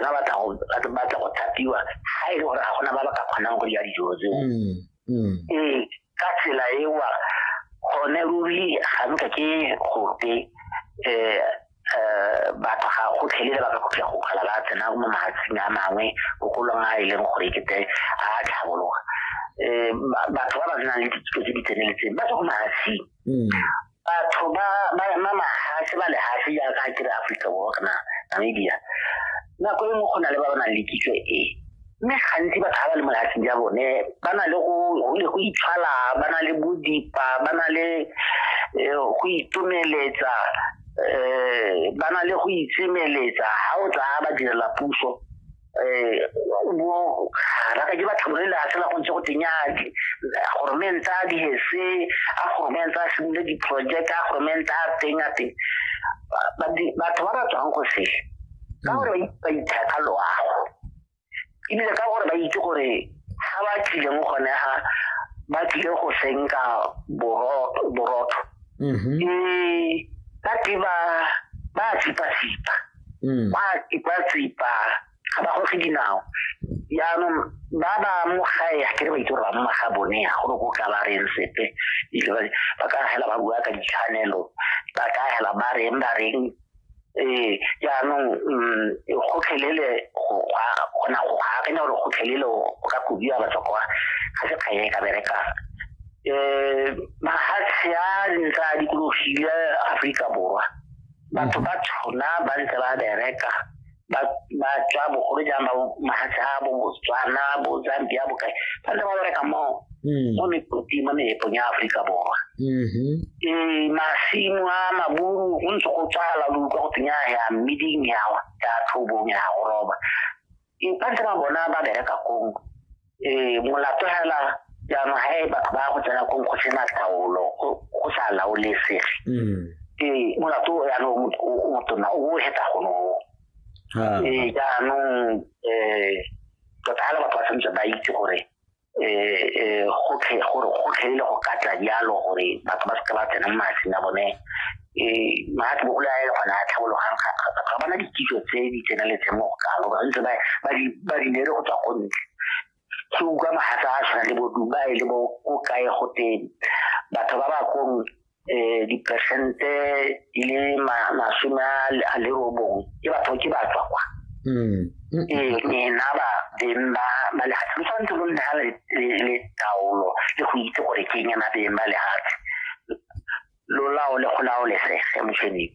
ba batla go batla go thapiwa ga e le gore ga gona ba ba ka kgonang go dira dijo tseo mm, mm. ee ka tsela ewa gone ruri ga nka ke gope um batho ga go tlhelele ba ka kgopja go kgala ba tsena mo mahatsing a mangwe bokolong a e leng gore ke te a tlhabologa um batho ba ba tsenang le ditso tse di tseneletseng ba tswa go mahatsing mm. batho ba mahatshe ba lehatshe jaaka ke re aforika borwa kana namibia nako e nngwe go na le ba ba nang le kitso e mme gantsi batho ba ba le mo lehatsheng ja bone ba na le go itshwala ba na le bodipa ba na le eh, go itomeletsa um ba na le go itsemeletsa ga o tsaya ba direla puso um mo ga ke ba tlhabolele a fela go ntse go tenyake goromente a dihese a goromente a simole diproject a goromente a teng a teng batho ba ba tswang go se ka hmm. gore ba ithata loago ebile ka gore ba itse gore ga ba tlileng gone ga ba tlile go senka borotho mm-hmm. ee ba tle ba ba tsipa-tsipa mm. ba tipa tsipa ga ba goge dinao jaanong ba ba mo gae ga kere ba itse gore ba mma ga bone ya gore ko ka ba reng sepe ba ka hela ba bua ka ditshwanelo ba ka hela ba reng ba reng ee jaanong mm, gotlhelele gona go akanya gore gotlhelele o ka kobiwa batho kwa ga se kganye e ka berekang um mahatshe a ntse a dikologile aforika borwa batho ba tshwana ba ntse ba bereka ba ba tswa bogolo jang ba mahatshe a bo botswana bo zambia bo kae ba ntse ba bereka mo Mm. mo mekoting mo meepong ya aforika borwa Mhm. ee masimo a maburu go ntse go tsala lo utlwa go teng ya ya mmeding yawa ya tlhobong ya go roba inpante ba bona ba bereka kong um molato hela jaanong ga e batho ba go tsena kong go sena taolo go sa laolesege um molato o yanong o motona o o heta gono um jaanong um tota hela batho ba tshwanetse ba itse gore um gotlhe gore gotlhe le go ka tla jalo gore batho ba seke ba tsena mo matsing a bone um maatla bogolo a e le gona a tlhabologang ga bana dikitso tse di tseneletseng mo go kalo ba ntse ba di nere go tswa go ntle ke utlwa magatsa a tshwana le boduba e le bo ko kae go teng batho ba ba kong eh dipersente di le masome a le robong ke batho ke ba tswa kwa mm. ee nena ba beng ba ba lehatshe lo tshwanetse lo nna le taolo le go itse gore ke eng yana beng ba lehatshe lo laole go laolesege moshweneng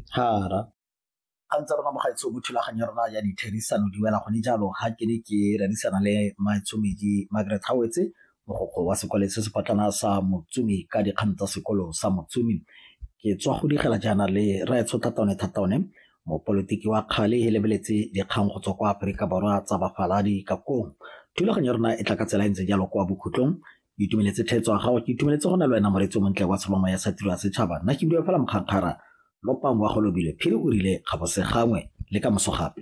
ga ntse rona mogaetsho mo thulaganyo ya rona ya ditherisano di wela gone jalo ga ke ne ke rerisana le maitshomedi margaret gawetse mogokgo wa sekole se sepotlana sa motsumi ka dikgang tsa sekolo sa motsumi ke tswa go digela jaana le raetsho thataone thataone mopolitiki wa kgale e lebeletse dikgang go tswa kwa aforika borwa tsa bafaladi ka kong thulaganyo ya rona e tla ka tsela e ntse jalo kwa bokhutlong itumeletse thetso ya gago ke itumeletse go na le wena moreetsi o montle wa tsholongwa ya satiro ya setšhaba nna ke buile fela mokgakgara Lopang wa go lobile, Phiri o rile ga go se gangwe le ka moso gape.